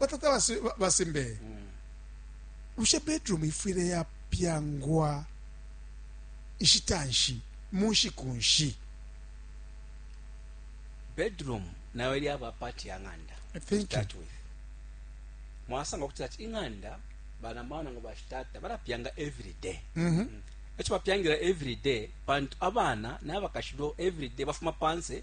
Batata basimbeye. Bushe bedroom ifwile yapyangwa nshita nshi, mu nshiku nshi? Bedroom nayo yaba part ya ng'anda. Thank you. Start with. Mwasanga kuti ati ing'anda bana maana ngo bashitata balapyanga every day. Mhm. Mm Echo bapyangira every day pantu abana nabakashilo every day bafuma panse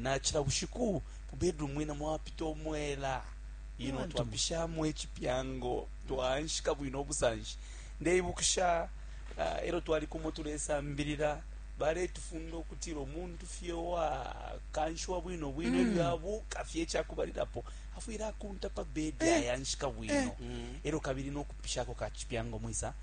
Na cila bushiku mu bedroom mwena mwapita umwela, you know, twapishamo icipyango, twaanshika bwino ubusanshi. Ndeibukisha e lyo twali kumo tulesambilila, baletufunda ukutila umuntu fye uwakanshiwa bwino bwino e lyo abuuka fye ica kubalilapo, afwile akunta pa bedi ayanshika bwino e lyo kabili no kupishako ka cipyango mwisa.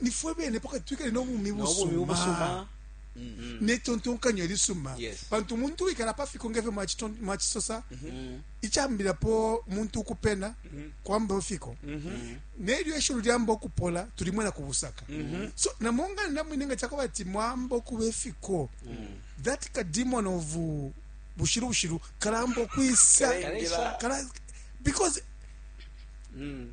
nifwe bene pakati twikale n'obumi busuma mm. netontonkanyo elisuma yes. pantu umuntu wikala pafiko ngefyo mwacisosa mm -hmm. icambilapo muntu ukupena mm -hmm. kwamba fiko mm -hmm. nelyo eshulu lyamba okupola tulimwena ku busaka mm -hmm. so namongana namwine nga cakoba ati mwamba okuba efiko mm -hmm. that kademon of uh, bushiru bushiru kalamba okwisa because mm.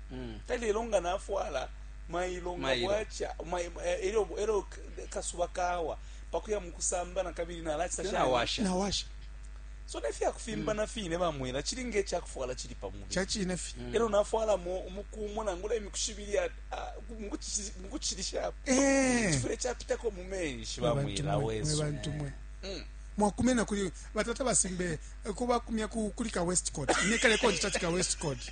mm. talelo nga nafwala mailo nga bwacha elo elo kasuba kawa pakuya mukusamba na kabili na lacha na washa na washa so ne fya kufimba mm. na fine ba mwela chili nge cha kufwala chili pa mubi cha chine fi mm. elo nafwala mo umukumo na ngula imikushibili ya mukuchilisha eh chifure cha pita ko mumenshi ba mwela wesu bantu mwe mm. mwakumena kuli batata basimbe eh, kubakumya kuli ka west court nekale konje cha ka west court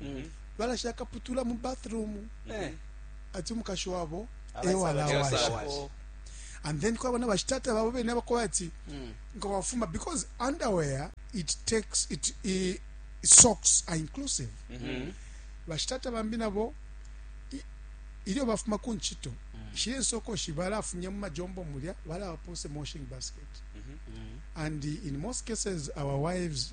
Mhm. balasha akaputula mu bathroom Eh. ati umukashi wabo Abasala- ewalawasha Ewalawasha. and then kwaba na bashitata babo bene abakoba ati Mm. nga wafuma because underwear it takes it, i socks are inclusive Mhm. bashitata bambi nabo i- ilyo bafuma ku ncito shile nsokoshi balafumya mu majombo mulya balawapose moshing basket and in most cases our wives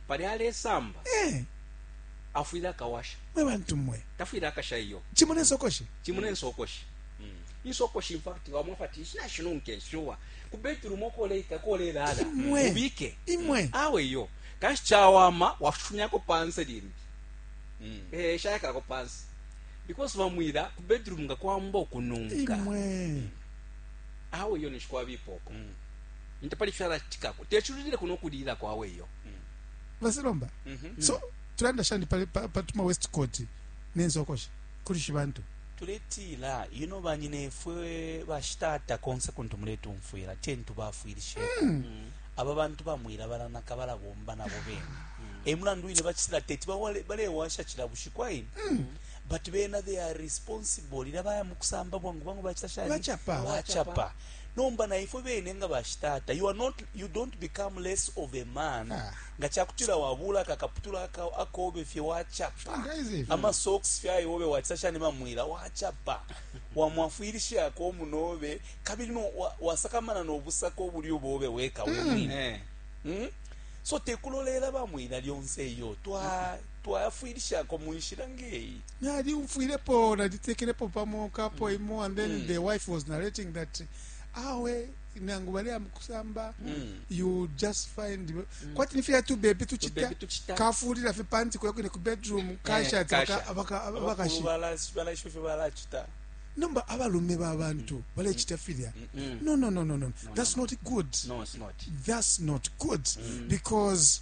pali alesamba eh. afwile akawasha mwe bantu mwe tafwile akasha iyo chimo nensokoshi chimo nensokoshi mm. insokoshi infact wamwe fati ishina shinunke nshuwa ku bedroom okoleika kolelala ubike imwe awe iyo kanshi chawama wafunyako panse limbi mm. eh shayaka ko panse because bamwira ku bedroom nga kwamba okununka imwe awe iyo nishikwa bipoko mm. nte pali fyalacitikako teculilileko no kulililako awe iyo basilomba mm -hmm. so tulanda shani pali patuma west court nenzokosha kulishi bantu tuletila ino banyinefwe bashitata konse kuntu muletumfwila tentu bafwilishe mm. mm. aba bantu bamwira baranaka barabomba nabo bene mm. emulandu wine bachisira teti barewasha chira bushiku ayi mm. but bena they are responsible ira baya mukusamba bwangu bwangu bachita shani bachapa bachapa Nomba na ifwe bene nga bashitata, you are not, you don't become less of a man ah. nga chakutila wabula kakaputula aka akobe fye wachapa ama socks fye ayobe watisasha ne mamwila wachapa wamwafwilisha ko munobe kabili no wasakamana no busako bulyo bobe weka mm. umwine eh. mm? so tekulolela bamwila lyonse iyo twa twayafwilisha ko munshira ngeyi nalyumfwilepo nalitekelepo pamo kapo mm. imo and then mm. the wife was narrating that awe nangu baleya mukusamba mm. you just find mm. kwati nifya tu bebe tuchita kafulila fe panti kwa kwine ku bedroom eh, kasha ati abaka abaka shi bala bala shi bala chita nomba abalume babantu mm. balechita filya mm. no no no no no that's not good no it's not that's not good because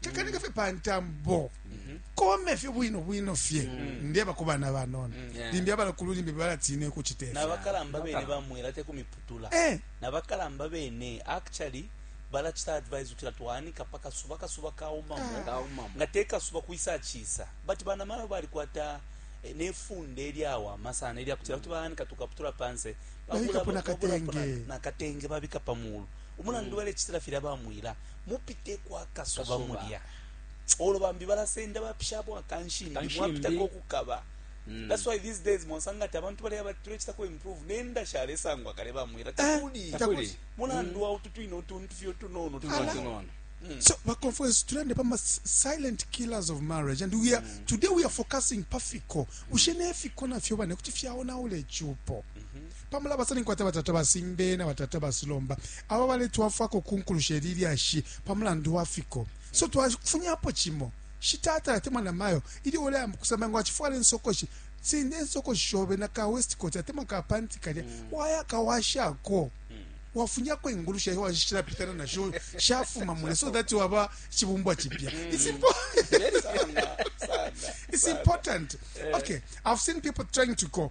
tekanika fye pa ntambo mhm. kome fye bwino bwino fye mhm. ndeba ku bana banono mhm. limbi abalakulu limbi balatiine kucita nabakalamba bene bamwela te kumiputula eh. nabakalamba bene actually balacita advise kutila twanika pa kasuba kasuba kaumamo nga te kasuba kwisa cisa but bana mayo balikwata eh, nefunde eryawama sana eryakutila kuti banika tukaputula panse nakatenge babika pamulu umulandu mm. balecitila filya bamwila mupiteko akasosoba olo bambi balasenda bapishapo akanshimbi mwapitako okukaba Mm. That's why these days mwasanga ati abantu baleya batulechita ku improve nenda shalesangwa kale bamwira eh, takuli takuli mulandu mm. wa utu twino tuntu fyo tunono tunono Mm. So, my conference trend about silent killers of marriage, and we are mm. today we are focusing pafiko. Mm. Ushene fiko na fyo bane kuti fyaona ule chupo. Mm -hmm. pa mulabasa ninkwata batata basimbe na batata basilomba aba baletwafwako kunkulusha ili lyashi pa mulandu wa fiko so twafunyapo cimo shitata atemwa na mayo ili uleyamba kusamba ngo achifwala insokoshi sinde insokoshi shobe na ka west coat atemwa ka panti kalya mm. waya kawashako mm. wafunyako ingulu shayo washishira pitana na show shafuma mule so that waba chibumbwa chipya mm. it's important it's important eh. okay i've seen people trying to go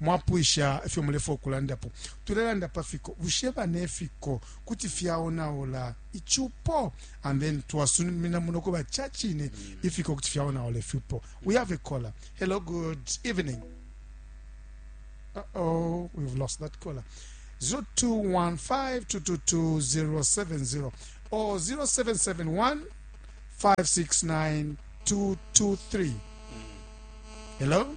mwapwisha ifyo mulefwaya ukulandapo, tulelanda pa fiko. Bushe bane ifiko kuti fyaonaula icupo? And then twasumina muno kuba ca cine ifiko kuti fyaonaula icupo. We have a caller. Hello, good evening. Uh-oh, we've lost that caller. 0215222070 or 0771 569 223. Hello?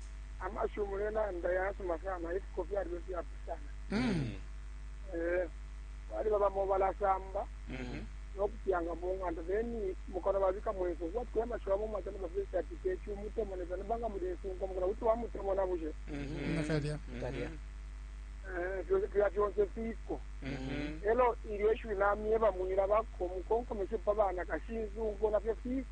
amashiwi mulelanda yasuma sana ifiko fyaliba ifyapusana Mm. Eh, baliba bamo balasamba Mhm. nokupyanga mu ng'anda then mukano babika mweso kubatikula amashiwi abo mwacana bafesi ati kechi umutemona sana banga muli ensunko mukana kuti wamutemona bushe Mhm. Nakalya. Nakalya. Eh, fyo- fya fyonse fiko Mhm. elo ilyo ishiwi namyeba mwila bako mukonkomeshe pa bana kashinsunko nafyo fiko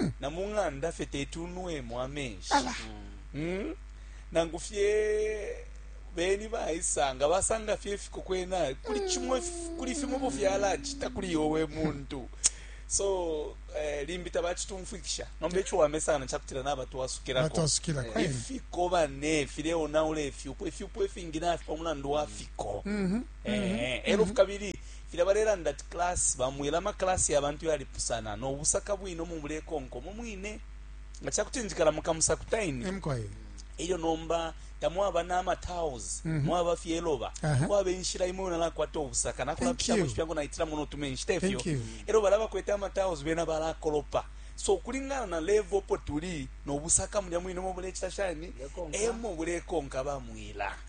mm. na mu ng'anda fye teti unwemo amenshi mm. nangu fye beni baisanga basanga fye ifiko kwena kuli chimwe kuli fimo bo fyalachita kuli yowe muntu so eh, limbi tabachitumfwikisha nombe icho wamesana chakutira naba twasukira ko eh, ifiko bane file ona ule ifyupo ifyupo ifingi na afipa mulandu wa fiko mm -hmm. eh, mm -hmm. ero mm -hmm. fukabili Filya balelanda ati class, bamweba ama class ya bantu yalipusana no busaka bwine umo mulekonka umo mwine. Nga ca kuti njikala mu Kamusakuta ine, e lyo nomba tamwaba na ama tiles, mhm. mwaba fye iloba, kwaba inshila imwe nalakwata ubusaka, nakulapishamo icipyango naitilamo no tumenshi, te fyo? E lyo balya bakwete ama tiles bena balakolopa so kulingana na level opo tuli nobusaka mulya mwine mo bulecita shani emo bulekonka bamwila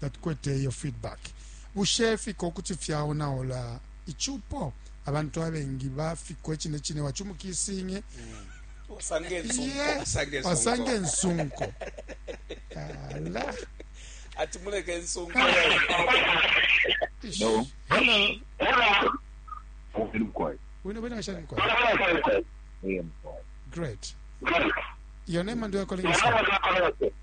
tatukwete iyo feedback bushe fiko kuti fyaonaula icupo abantu abengi bafiko icine cine wacumukisinye wasange nsunko ala ati muleke nsunko hello hello wino mkwai wino wino ashani mkwai yeah mkwai great your name and your calling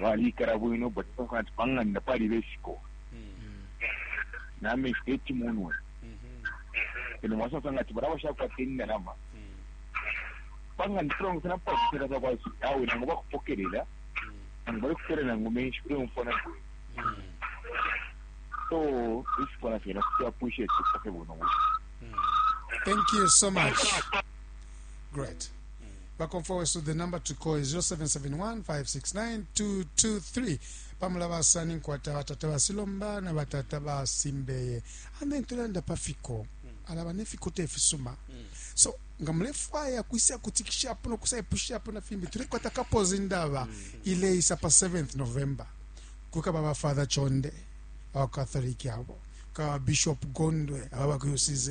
balikala bwino but ati panganda pali besiko nameshi techimunwe eno mwasasanga ati balaba shakwata indalama panganda tulongosana pakutela sakwasu awe nangu bakupokelela nangu balikutela nangu menshi uleumfwa nabwe so isikona fyena kuti appreciate kufake buno buno thank you so much great bakomfwa wesu the number to call is 0771569223 pamulabasa ninkwata batata basilomba na batata basimbeye and then tulanda pafiko alaba nefiko tefisuma so nga mulefwaya kwisa kutikishapo nokusaipushapo na fimbi tulekwata kapozi ndaba ileisa pa 7th november kukaba ba father chonde abakatholiki abo kukaba bishop gondwe ababa ku ucz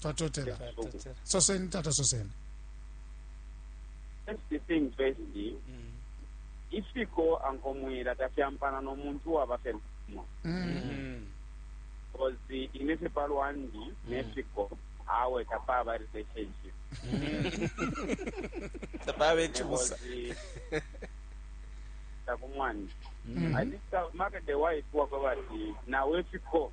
twatotela soseni tata soseni first thing first mm. ifiko ankomwila tafyampana nomuntu waba fye lumo mm. kozi ine fye palwandi mm. nefiko awe tapaba relationship tapaba ekibusa takumwandi mm-hmm. i think uh, market the wife waba bati nawe fiko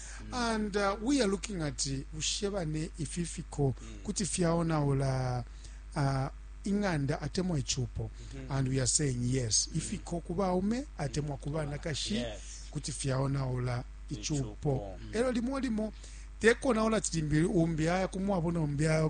mm. and uh, we are looking at bushe bane ifi fiko mm. kuti fyaonaula uh, ing'anda atemwa ichupo mm -hmm. and we are saying yes mm. ifiko ku baume atemwa ku banakashi yes. kuti fyaonaula ichupo mm. elo limo limo tekonaula tilimbili umbi aya kumwabona umbi aya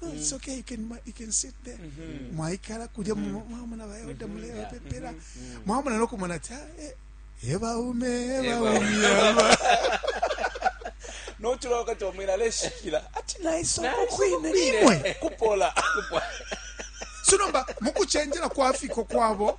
No, mm. it's okay. You can you can sit there. Mm-hmm. Mwaikala kuja mm-hmm. mwamuna bayoda mulewa pepera. Mwamuna no kumona ta eh, eba ume eba ume. No tula wakati wa mwina leshikila. Ati na iso kukwine imwe. Kupola. Kupola. Sunomba mukuchenjela kwa afiko kwabo.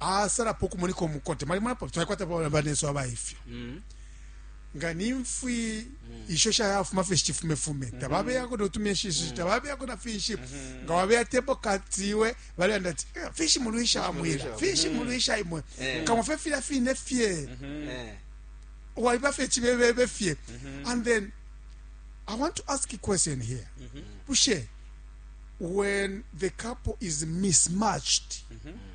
asalapo ukumoneka umukote mwalimonapo twalikwata banesu aba ifyo mm. nga nimfwi mm. isho shayafuma fye shichifumefume mm-hmm. tababeyako notumyeshishi mm-hmm. tababeyako na finshi mm-hmm. nga wabeya tepo katiwe balanda ati eh, fishi mulwisha amwira fishi mulwisha imwe eh. kamwe fe fila fine fye eh. waliba fye chibebebe fye and then i want to ask a question here bushe when the couple is mismatched mm -hmm.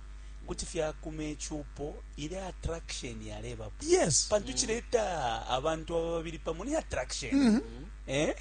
kuti fyakuma icupo ile attraction yalebapo yes pantu cileta abantu aba babili pamo ni attraction mm -hmm. eh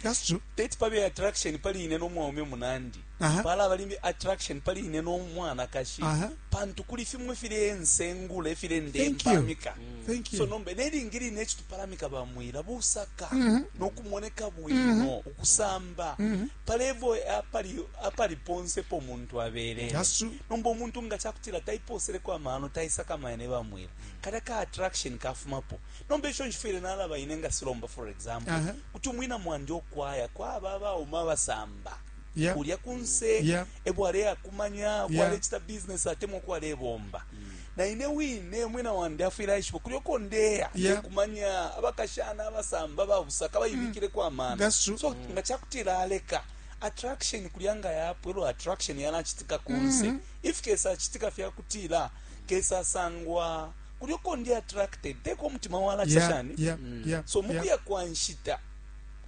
that's true teti pabe attraction pali ine n'omwaume munandi uh -huh. pala bali attraction pali ine n'omwanakashi uh -huh. pantu kuli fimwe file ensengula efile ndempamika mm. so nombe nelingi line ekitupalamika bamwira busaka mm -hmm. n'okumoneka bwino mm -hmm. ukusamba mm -hmm. pa level apali apali ponse po muntu abelele That's true. nomba umuntu nga chakutila taiposeleko amano taisakamaya ne bamwila kalya ka attraction kafumapo nomba ico nshifwile nalaba ine nga silomba for example Aha. kuti umwina mwandi okwaya kwaba abauma abasamba Yeah. kulya kunse Yeah. ebwaleyakumanya bwalecita business atemwa kwalebomba na ine wine umwina wandi afwile aishiba kulyo ko ndeya yeah. kumanya abakashana abasamba babusaka bayibikile mm. kwa mana so mm. nga chakutila aleka attraction kulya nga yapo elo attraction yalachitika kunse mm -hmm. if kesa achitika fya kutila kesa sangwa kulyo ko ndi attracted teko mutima wala yeah, chashani yeah, mm. yeah, so mukuya yeah. kwa nshita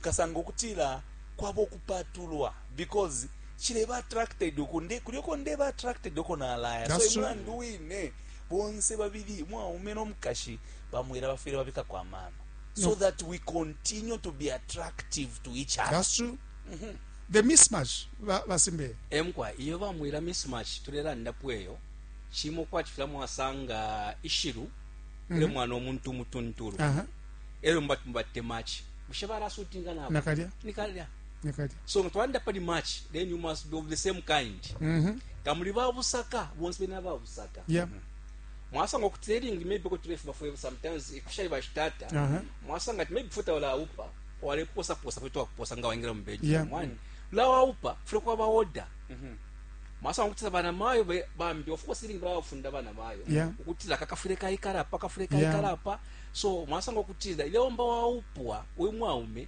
kasanga kutila kwabo kupatulwa because cileba attracted uku nde kulyo ko ndeba attracted uko nalaya so That's right. imlandu wine bonse babili umwaume nomukashi bamwera bafwire babika kwa mano so No. that we continue to be attractive to each other that's true the mismatch ba- basimbeye emkwa iyo bamwira mismatch tulelandapo eyo cimo kwati fula mwasanga ishiru ule mwana omuntu umutuntulu Aha. elo mubati mubatte machi bushe barasutinga nabo Nakalya. nikalya so nga twalanda pali match then you must be of the same kind mm-hmm. nga muli babusaka bonse bena babusaka yeah. mm-hmm. mwasanga kuti teringi maybe ko tulefu bafwe sometimes ifishali bashitata uh-huh. mwasanga maybe futa wala upa wale posa posa kwetu wakuposa nga waingira mbeji yeah. mwani la waupa fule kwa ba order mm-hmm. mwasanga kuti bana mayo bambi of course iringi bawafunda bana mayo yeah. kuti la kakafule ka ikara pa kafule ka ikara pa so mwasanga kuti ile omba waupwa uyu mwaume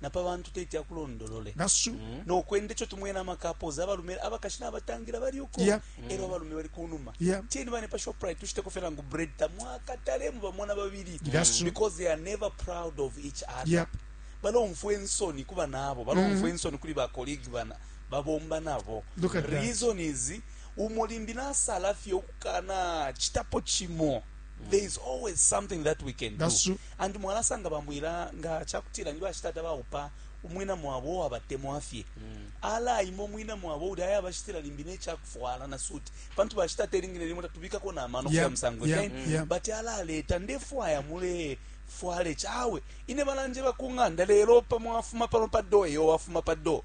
na pa bantu teti akulondolole nasu mm. no kwende cho tumwena amakapozi abalume abakashi nabatangira bali uko yeah. mm. ero abalume bali kunuma yeah. cheni bane pa shoprite tushite kofera ngu bread tamwaka talemu bamona babiri mm. because they are never proud of each other yeah. balomfwa ensoni kuba nabo balomfwa mm-hmm. ensoni kuli ba colleague bana babomba nabo reason is umulimbi nasala fye okukana chitapo chimo mm. there is always something that we can That's do true. And mwalasanga bamwila nga chakutila ni bashitata baupa umwina mwabo uwabatemwa fye mm. alaima umwina mwabo uli aya bashitila limbi nechakufwala na suit pantu bashitata elingine limo tatubikako na mano yeah. musango yeah. okay? yeah. but alaleta ndefwaya mule fwale chawe ine balanje bakunganda lelo pamwafuma pano pa do eyo wafuma pa do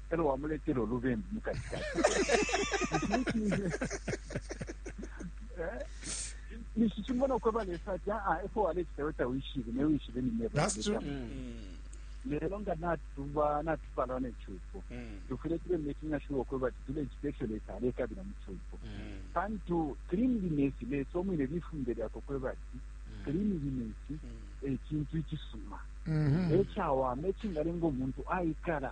elo wamuletela ulubembu mukati kati nishichimbona ukweba lesa ati aa ah, efo walechitayo tawishibe newishibe nineba lelo nga natuba natupalwa nechupo mm. tufune tube making sure okweba ati tule chipesho lesa alekabila muchupo mm. pantu cleanliness lesa omwine lifunde lyako kweba ati mm. cleanliness mm. ekintu eh, ikisuma mm-hmm. ekyawama ekingalenga omuntu ayikala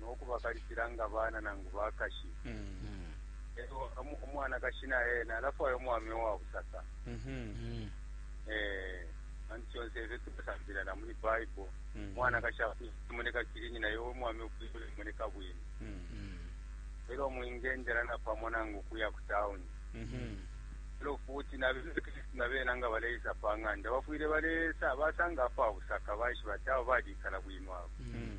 no kubakalipila nga bana nangu bakashi lelo umu- umwanakashi na ena alafwaya umwami uwa busaka Mhm. Eh, kandi kyonse ebyo tukusambira na muri bible Mhm. mwanakashi akumoneka kirinyi naye omwami okwibula emoneka bwino Mhm. era omwingendera napamo nange okuya ku tawuni Mhm. era fuuti nabekristu nabeena nga baleisa pa ng'anda bafwire baleesa basanga apo abusaka baishiba ati abo balikala bwino abo Mhm.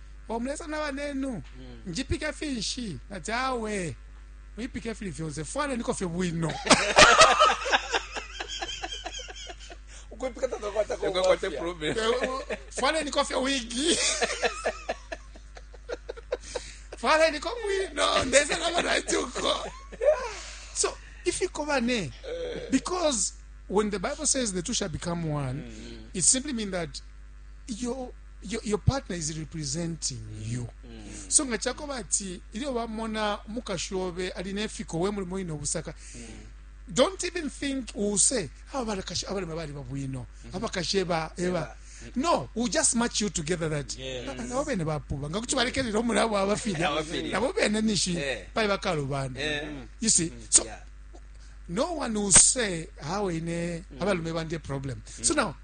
o mulesa na banenu njipike finshi nati awe mwipike fili fyonse fwaneniko fye bwino ukwipika takakwata ko Ukakwate mafia. problem. fwaneniko fye wigi fwaneniko bwino ndese na banatuko so ifiko bane because when the bible says the two shall become one it simply mean that your your, your partner is representing you so nga chakoba ati ilyo bamona umukashi obe ali nefiko we mulimo ino busaka don't even think use aba balakashi abalema bali babwino abakashi eba eba no we just match you together that Yes. Ah, nabo bene bapuba nga kuti balekerera omulabo abafirya Abafirya. nabo bene nishi Eh. pali bakalubanda Eh. you see so Yeah. no one will say hawe ine abalume bandi problem so now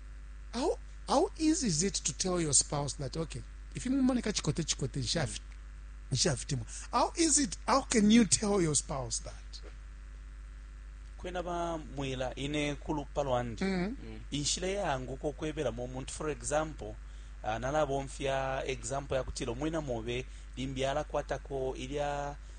how How easy is it to tell your spouse that okay, if you mumoneka chikote chikote nshafit nshafitimwa. How is it how can you tell your spouse that? kwena bamwila ine kulupa lwandi mm -hmm. inshila yaanguka okwebelamo omuntu for example uh, nalabomfya example yakutila omwina mobe limbi alakwatako ilya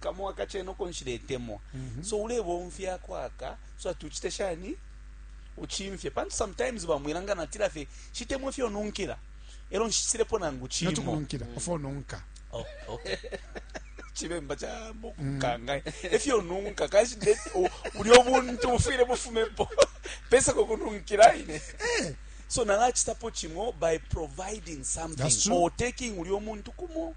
kamo akachena uko nshiletemwa mm -hmm. so ulebomfya kwaka so ati uchite shani uchimfye pantu sometimes bamwilanga natila fye shitemwa ifyo nunkila elo nshisilepo nangu chimo natukununkila mm. ofo nunka oh, okay. chibemba cha mukanga mm. efyo nunka kashi uli obuntu bufwile bufumepo pesa kokununkila ine eh. so nalachitapo chimo by providing something or taking uli omuntu kumo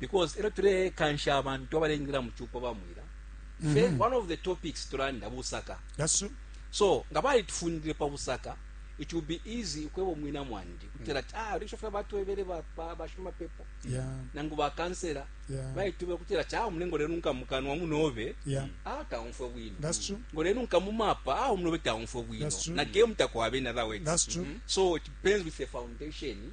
because elo tulekansha abantu abalengila mu cupo bamwila mm -hmm. one of the topics tulanda busaka That's true. so nga balitufundile pa busaka it will be easy ukweba omwina mwandi kutera ati ah risho fya batwebere ba bashuma pepo yeah. nangu ba kansera yeah. bayitube kutera ati ah mlengo lero nka mukanwa munobe yeah. ah taumfwe bwino that's true ngo lero nka mumapa ah munobe taumfwe bwino na game takwabe na that way that's true mm -hmm. so it depends with the foundation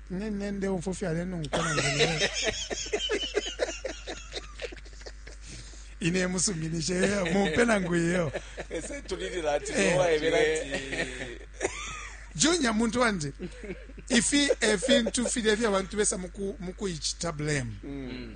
nende umfo fyalenunkwa nange ine musuminishe mumpe nangu iyo ese tulilila ati eh. waebera ati junior muntu wanje ifi efintu filya fya bantu besa muku mukuichita blame mm.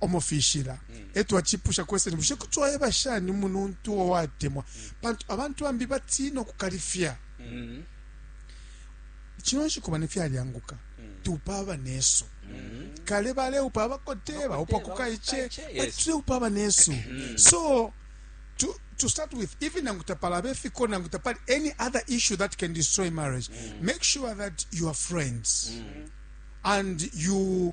omofishila eto achipusha kweseni bushe kuti wayeba shani umuntu uwo watemwa pantu abantu bambi batiina okukalifya kino nshiku bane fyalyanguka tupa abanesu kale baleupa abakote baupa kukaiche tuleupa abanesu so to, to start with even nangu tapalaba efiko nangu tapali any other issue that can destroy marriage make sure that you are friends and you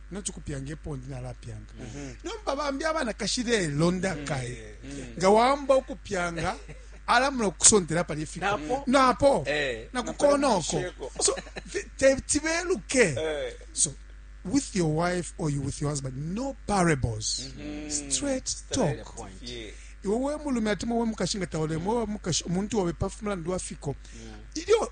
nachikupyanga epo ndi nalapyanga nomba bambi abanakashi lelo ndakaye nga wamba ukupyanga alamula okukusontera pali efiko Napo? napo Eh. nakukonoko Napo so vi- te- tibeluke so with your wife or you with your husband no parables straight talk Point. Yeah. iwe we mulume ati mwe mukashi nga taolemo mukashi omuntu obe pafu mulandu wa fiko ilyo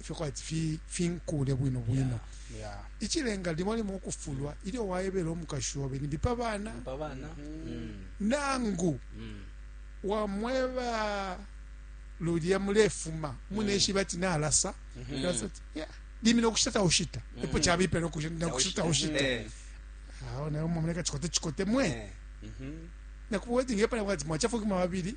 ifyo kwati fi finkule bwino bwino ichilenga limo limo kufulwa ilyo waebela umukashi obe ni bipa bana mm. nangu mm. wamweba lulya mulefuma muneshiba mm. ati nalasa mm-hmm. limina ukushita taushita mm-hmm. epo chabipela ukushita taushita eh. awo nayo mwamuleka chikote chikote mwe eh. mm-hmm. nakuba wedding epala bwati mwachafuka mababili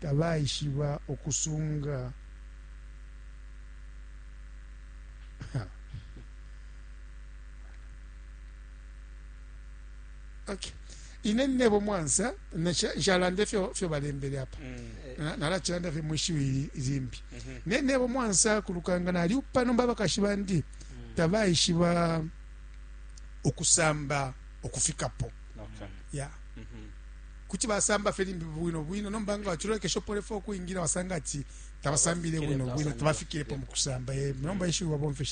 tabaishiba ukusunga okay. ine nebo mwansa nshalande fyo fyo balembele apa mm. Eh, nalachilanda fye mwishiwi zimbi mm -hmm. ne nebo mwansa kulukanga nali upano mbaba kashibandi mm. tabaishiba ukusamba okufikapo okay. yeah. mm -hmm. kuti basamba fye limbi bwino bwino nomba nga wacilolekesha upolefa ukwingila wasanga ati tabasambile bwino bwino tabafikilepo mu kusamba eh, nomba ishiwi wabomfeshe